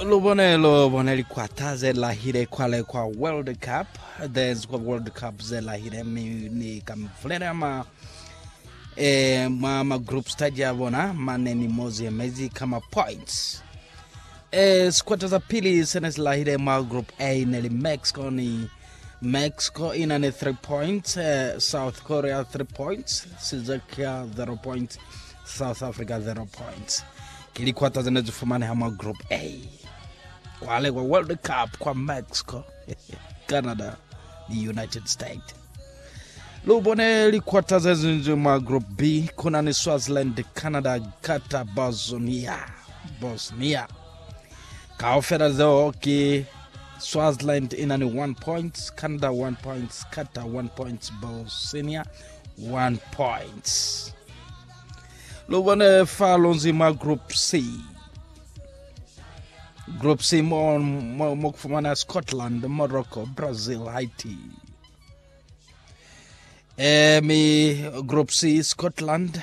lubone lubone likwata zelahile kwale kwa world cup there's kwa world cup zelahile mi ni kamvulela ma e, mwa ma group stage ya bona mane ni mozi emezi kama points e sikwata za pili sene silahile mwa group a ne li mexico ni Mexico ina ni 3 points, South Korea 3 points, Czechia 0 points, South Africa 0 points. Ke likwata zene zifumaneha mwa Group A. Kwale kwa World Cup kwa Mexico, Canada ni United States. Lu bone likwata ze zinzwi mwa Group B kuna ni Swaziland, Canada, Qatar, Bosnia. Bosnia. Kaufela zeo ki Swaziland ina ni 1 points, Canada 1 points, Qatar 1 points, Bosnia 1 points. Lubone fa lonzi mwa group C. Group C mo mo, mo kufumana Scotland, Morocco, Brazil, Haiti. Eh, mi group C Scotland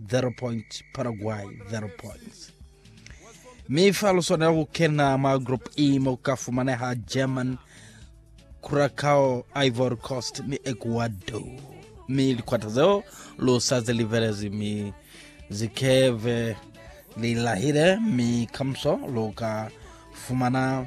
0 points, Paraguay 0 points. Mi fa lu swanela ku kena mwa Group E mo ku ka fumaneha German, Curacao, Ivory Coast ni Ecuador. Mi likwata zeo lu sa ze livelezi mi zikeve li lahile mi kamuso lu ka fumana